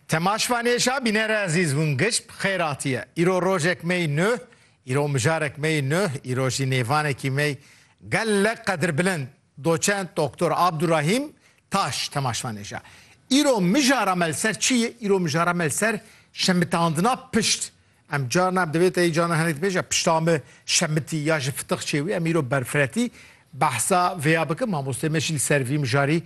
Temaş Vanêşa bînere ezîz hûn giş bi xêr hatiye. Îro rojek me yî nuh, îro mijarek me yî nuh, îro jî nêvanekî me yî gelek qedirbilind, doçent Doktor Abdurahîm Taş Temaş Vanêşa. Îro mijara me li ser çi yê? Îro mijara me li ser şemitandina pişt Em carna em divê teyî carna hinek dibêje pişta me şemitî ya ji fitix çê wî em îro berfiretî behsa vêya bikim mamostê me jî li ser vî mijarî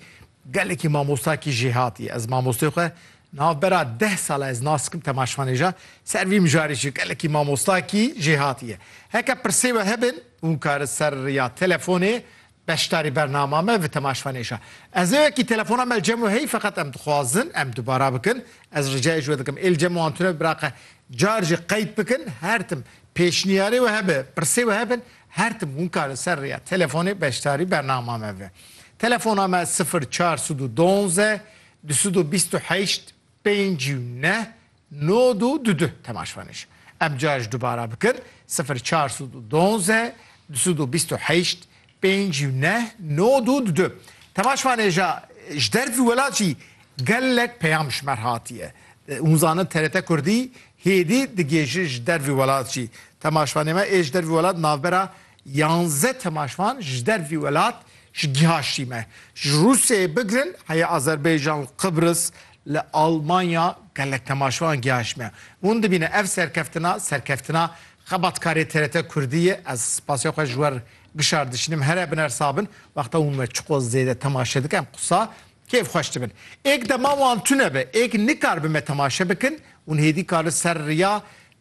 gelekî mamosta kî jê hatiye ez mamostê xwe nav bera deh sala ez nas dikim temaşvanêja ser vî mijarî jî gelekî mamosta kî jê hatiye heke pirsê we hebin hûn karin ser ya telefonê Beşdarî bernama me vi tema şvanêşa. Ez ê wekî telefona me li Cemo hey feqet em dixwazin em dubara bikin. Ez ricayê ji we dikim ê li Cemo an tune biraqe car jî qeyd bikin her tim pêşniyarê we hebe pirsê we hebin her tim hûn karin ser rêya telefonê beşdarî bernama me ve. Telefona me sifir çar sed û donze du sed û bîst û heşt Pênc û neh nod û du du temaşvanij em cara ji dubara bikin sifir çar sud û donze du sud û bîst û heşt pênc û neh nod û du du temaşvanêja ji dervî welat jî gelek peyam ji mer hatiye hûn zanin TRT Kurdî hêdî digêjin ji dervî welat jî temaşvanê me ê ji dervî welat navbera Yanze temaşvan ji dervî welat ji giha şîme ji Rûsyayê bigirin heye Azerbaycan û Qibris li Almanya gelek temaşvan giha şîme. Hûn dibîne ev serkeftina serkeftina xebatkarê TRT Kurdî ye. Ez spasê xwe ji wer gişar dişînim here bin ersa bin. Wexta hûn me çiqo zêde temaşe dikin qisa kêf xweş dibin. Êk dema wan tune be êk nikaribe me temaşe bikin hûn hêdî kar li ser riya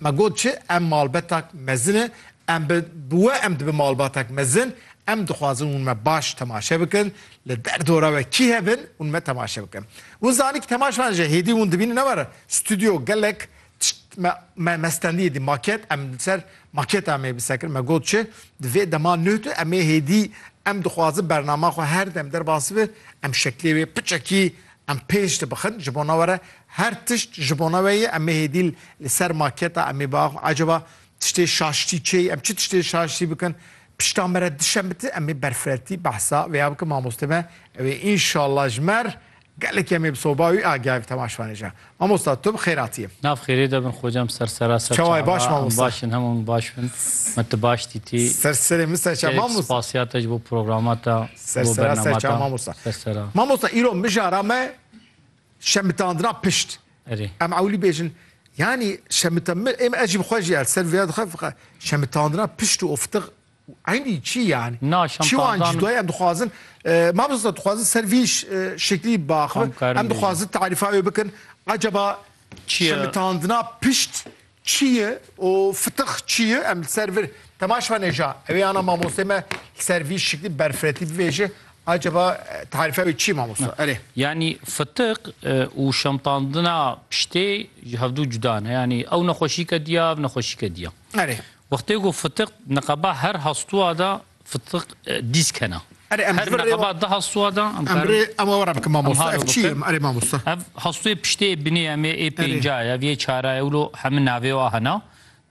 Me got çi, em malbetak mezin e, em bi bi we em dibin malbatek mezin, em dixwazin hûn me baş temaşe bikin, li der dora we kî hebin hûn me temaşe bikin. Hûn zanî ki temaşevan ji hêdî hûn dibînin ne were stûdyo gelek tişt me me me stendiye dî maket em li ser maketa me bi ser kir me got çi di vê dema nuh tu em ê hêdî em dixwazin bernama xwe her dem derbas bi em şeklê wê piçekî Em pêş dibixin ji bona we re her tişt ji bona we ye. Em ê hêdî li ser maketa em ê biaxivin ecaba tiştê şaştî çê ye? Em çi tiştê şaştî bikin? Pişta me re dişemite em ê berfireltî behsa vêya bikin. Mamoste me ew ê înşallah ji me re gelekî em ê bi soba wî agihayê bi temaşevanê jî. Mamosta tu bi xêratî yî. Nav xêrê de bin xocam ser sera ser Çawa ye baş çawa em mamosta? baş in hemû min baş bin me tu baş dîtî Ser serê min ser çawa gelek mamosta. spasiya te ji bo programa te Ser bo sera ser bernama çawa te mamosta. ser sera Mamosta îro mijara me şemitandina pişt. erê Em ewilî bêjin yanî şemita min ê min ez jî bi xwe jî ya li ser vêya dixwe fiqa şemitandina pişt û oftiq Eynî çî yanî? Na şantajan. Çiwan cî em dixwazin mamosta dixwazin ser vî şeklî biaxivin. Em dixwazin tarîfa wê bikin. Ecaba şemitandina pişt çî ye û fitix çî ye? Em li ser vir temaş venê ja. Ewê ana mamostê me li ser vî şeklî berfiretî bivêje. Ecaba tarîfa wê çî mamosta? Erê. Yanî fitix û şantandina piştê ji hevdu cuda ne. Yanî ew nexweşî ke diya ev nexweşî ke diya. Erê. Wextê ku fitiq niqaba her hastuwa da fitiq dîsk hena. Erê em ji Her vir rê niqaba wa. di hastuwa da em Em karê. rê em were bikin mamosta. halo Ev çi ye bikin. em erê mamosta? Ev hastuyê piştê binê em ê ê pênca ye, ev yê çara ye wilo hemû navê wa hena.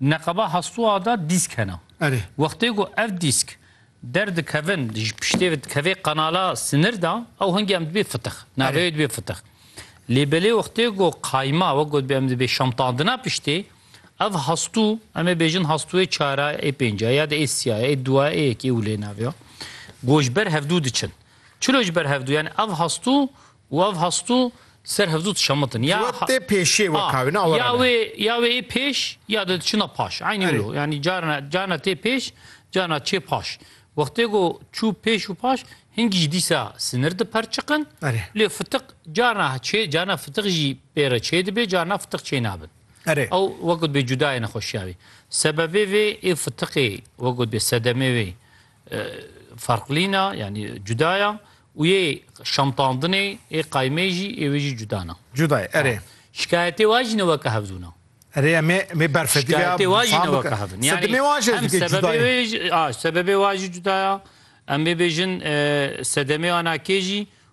Niqaba hastuwa da dîsk hena. Erê. Wextê ku ev dîsk derdikevin ji piştê ve dikevê qanala sinir da ew hingê em dibê fitiq. Navê Erê. wê dibê fitiq. Lê belê wextê ku qayma wek gotibê em dibê şamtandina piştê Ev hastû, em ê bêjin hastûyê çar e, ê pênc e, ya de ê sî ye, ê du ye, ê yekê û lê nav ye. Ku ji ber hevdû diçin. Çilo ji ber hevdû yani ev hastû û ev hastû ser hevdû dişemitin. Ya Wê tê pêşê wek ha wê ne awe ya rabe. wê ya wê ê pêş ya de diçina paş. Eynî Erê. wilo. Yani carina carina tê pêş, carina çê paş. Wextê ku çû pêş û paş hingî jî dîsa sinir diperçiqin. Erê. Lê fitiq carina çê carina fitiq jî pê re çê dibe, carina fitiq çê nabin. Erê. Ew wek got bê cuda ye nexweşiya wî. Sebebê vê ê fitiqê wek got bê sedemê wê farqlîna yanî cuda ya û yê şamtandinê ê qaymê jî ê wê jî cuda na. Cuda ye erê. Şikayetê wa jî ne weke hevdûn a. Erê em ê mê berfedî be ya. Şikayetê wa jî ne weke hevdûn. Sedemê wa jî ez dikê cuda ye. Sebebê wa jî cuda ya. Em ê bêjin sedemê ana kê jî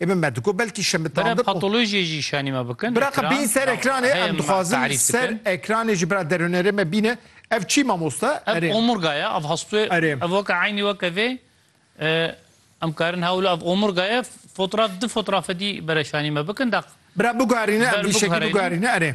Ê min me diko belkî şemitandin û. Bira patolojiyê jî şanî me bikin. Bira qe bîn ser ekranê em dixwazin ser ekranê jî bira derhunêrê me bîne. Ev çî mamoste? Ev omurga ye ev hastê ev weke eynî weke vê em karin hewle ev omurga ye fotraf di fotrafe dî bira şanî me bikin de. Bira bigarîne em vî şekî bigarîne erê.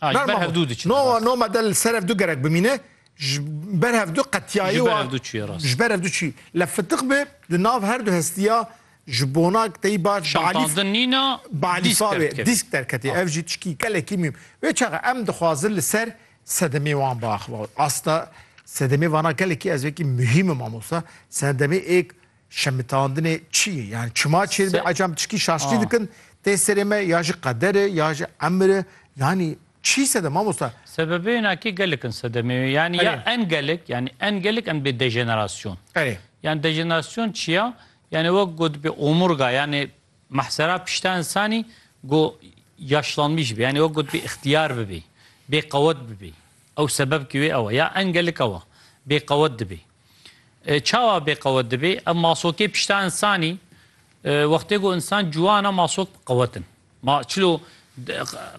Ah, ji ber hev dû diçin. No, no me del ser hev dû gerek bimîne. Ji ber hev dû qetiyayî Ji ber hev dû çiye rast. Ji ber hev dû çi. Le fitiq bi di nav her du hestiya ji bona tey baş Şantandin nîna disk derketê. Disk derketê. Ev jî tişkî gelekî mîm. Wê çaxa em dixwazin li ser sedemê wan biaxivin. Asta sedemê vana gelekî ez wekî muhîm im mamosta. Sedemê êk Şemitandinê çi ye? Yani çima çê dibe ecam tişkî şaştî dikin tê serê me ya ji qeder e ya ji emir e yanî çi sedem mamosta? Sebebê nakî gelek in sedemê wê yanî ya en gelek yanî en gelek em dibê dejenerasyon. Erê. Yanî dejenerasyon çi ya? Yanî wek got dibê omurga yanî mahsera pişta însanî ku yaşlanmî jibê yanî wek got dibê îxtîyar bibê, bêqewet bibê. Ew sebebkî wê ew e. Ya en gelek ew e. Bêqewet dibê. Çawa bê qewet dibê? Ev masokê pişta însanî wextê ku însan ciwan e masok qewet in. Ma çilo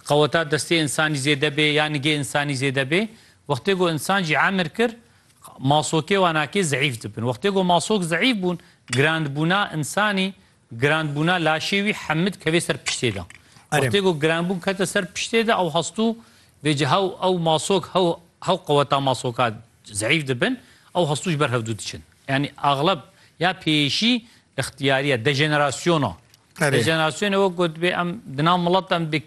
qeweta destê însanî zêde bê ya nigê însanî zêde bê. Wextê ku însan jî emir kir masokê wanakê zeîf dibin. Wextê ku masok zeîf bûn, girandbûna însanî Girandbûna laşê wî Hemid kevê ser piştê de. Wextê ku girandbûn kete ser piştê de ew hestû vê cî hew ew masok hew hew qeweta masoka zeîf dibin ew hestû ji ber hevdû diçin. Yanî axleb ya pêyîşî ixtiyarî ye, dejenerasyona. Dejenerasyonê wek gotibê em di nav milet de em dê